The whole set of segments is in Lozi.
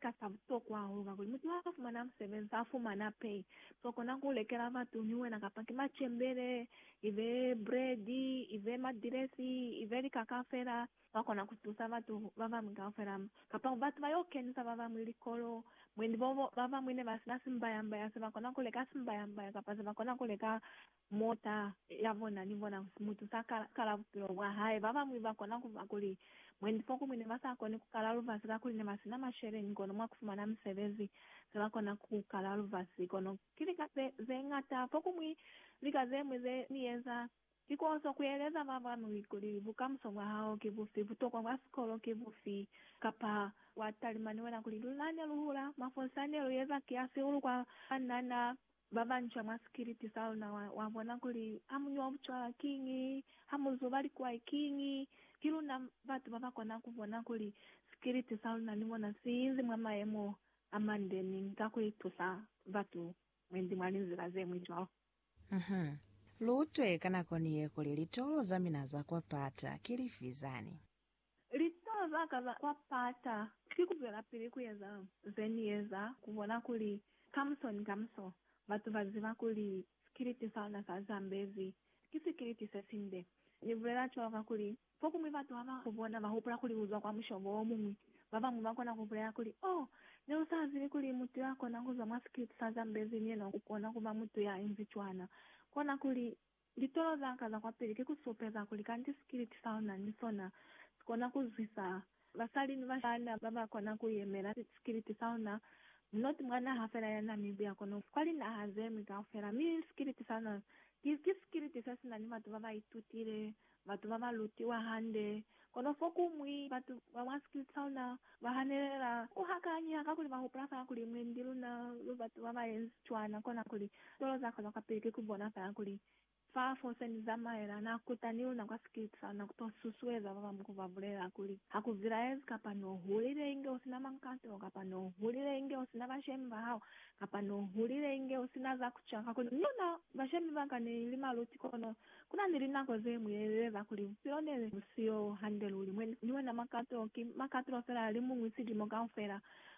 Ka sa butokwa hahulu kakuli mutu ha fumana musebezi, ha fumana pay, to kona ku lekela batu ni wena kapa ki macembele, ibe bread, ibe madilesi, ibe likaka fela. Wa kona ku tusa batu ba bamwi kaufela mo, kapa ku batu ba yo kenisa ba bamwi likolo. Mwendi bobo, ba bamwi ne ba sina simbayambaya se ba kona ku leka simbayambaya kapa se ba kona ku leka Mota ya bona ni bona ku si mutu sa ka kala bupilo bwa hae. Ba bañwi ba kona ku ba kuli, Mwendi fokuñwi ne ba sa koni ku kala lubasi kakuli ne ba si na masheleñi, kono mwa ku fumana misebezi se ba kona ku kala lubasi. Kono ki lika ze, ze ñata. Fokuñwi lika ze ñwi ze ni eza, ki k'o so kueleza ba bañwi kuli bukamuso bwa hao ki bufi, butokwa bwa sikolo ki bufi, kapa wa talima ni wena kuli, Luna ne lu hula, mafolisa ne lu eza kiasi hulu kwa banna na Babanca mwa sikiliti saluna wabona kuli hamunywa bucwala kiñi, hamuzuba likwai kiñi. Kiluna batu babakona kubona kuli sikiliti saluna ni mona siinzi mwa mayemo amande mi ka kuitusa batu mwendi mwa linzila zeñwi cwalo. Uhum. Luutwe ka nako niye kuli litolo zamina za kwa pata ki lifi zani. Litaba zaka za kwa pata ki kuzwelapili kueza zenieza kubona kuli kamuso ni kamuso batu baziba kuli sikiliti saona sa Zambezi ki sikiliti sesinde. Nibulela cwalo kakuli fokuñwi batu haba kubona bahupula kuli uzwa kwa mushobo omuñwi. Babañwi bakona kubulela kuli, Oh, neusazibi kuli mutu yakona kuzwa mwa sikiliti sa Zambezi ni yena ukona kuba mutu yainzi cwana. Kona kuli, Litolo zaka za kwapili ki ku supeza kuli kanti sikiliti sa luna ni sona si kona ku zwisa basali ni bashana ba ba kona ku yemela sikiliti sa luna, mu not mwa naha fela ya Namibia kono kwa linaha ze ñwi kaufela. Mi sikiliti sa luna ki sikiliti se si na ni batu ba ba itutile Batu ba ba lutiwa hande. Kono fokuñwi, batu ba mwa Splitsona ba hanelela ku hakanya ka kuli ba hupula fela kuli mwendi luna lu batu ba ba yenzi cwana, kona kuli tolo za kona kwapili ki ku bona fela kuli fa fo se ni zamaela. Na kuta ni luna kwa Splitsona ku to susueza ba bañwi ku ba bulelela kuli, Ha ku zilaezi kapa n'o hulile inge u si na mankato, kapa n'o hulile inge u si na bashemi ba hao, kapa n'o hulile inge u si na za ku ca, kakuli luna bashemi ba ka ne li maluti, kono Ku na ni linako ze mu yeleleza kuli bupilo ne bu siyo hande luli, mwe ni wena makato ki makato fela a li muñwi silimo kaufela,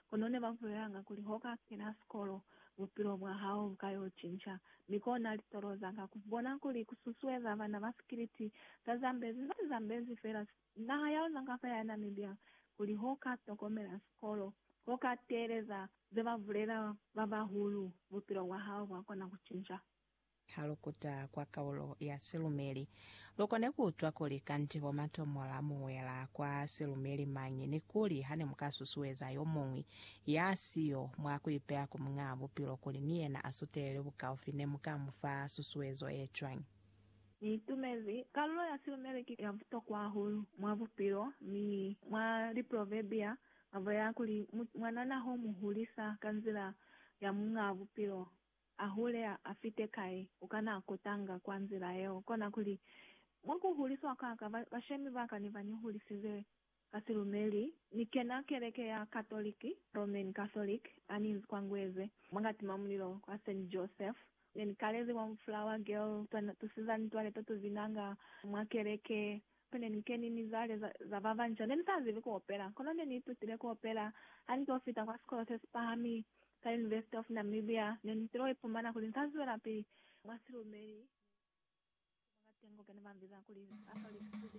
kono ne ba bulelanga kuli ho ka kena sikolo, bupilo bwa hao bu ka yo cinca. Mi kona litolo za ka ku bona kuli ku susueza bana ba sikiliti za Zambezi ba Zambezi fela, naha ya luna kaufela ya Namibia, kuli ho ka tokomela sikolo, ho ka teeleza ze ba bulela ba bahulu, bupilo bwa hao bwa kona ku cinca. Ha lu kuta kwa kaulo ya silumeli, lu kone ku utwa kuli kanti bo matomola mu wela kwa silumeli mañi ni kuli ha ne mu ka susueza yo muñwi ya si yo mwa ku ipeya ku Muñaa Bupilo kuli ni yena a sutelele bukaufi, ne mu ka mu fa susuezo ye cwañi? Ni itumezi kaulo ya silumeli ki ya butokwa hahulu mwa bupilo, mi mwa Liproverbia ba bulela kuli, Mwanana ho mu hulisa ka nzila ya Muñaa Bupilo, A hule, a, a fite kai, u kana a kutanga kwa nzila yeo. Kona kuli, mwa ku huliswa kwa ka, ba, bashemi ba ka ne ba ni hulisize ka silumeli. Ni kena keleke ya Katoliki, Roman Catholic, ha ni nzi kwa Ngweze, mwa kati mwa mulilo kwa Saint Joseph. Ne ni kalezi kwa Flower Girl, twa tusiza mitwale to tuvinanga mwa keleke. Ku ne ni keni mizwale za ba banca. Ne ni sa zibi ku opela, kono ne ni itutile ku opela. Ha ni t'o fita kwa sikolo se si pahami, sa University of Namibia, ne ni t'il'o ipumana kuli ni sa zwelapili mwa silumeli. Mwa silumeli se ni fita ku makatengo ke ne ba mbiza kuli Catholic student.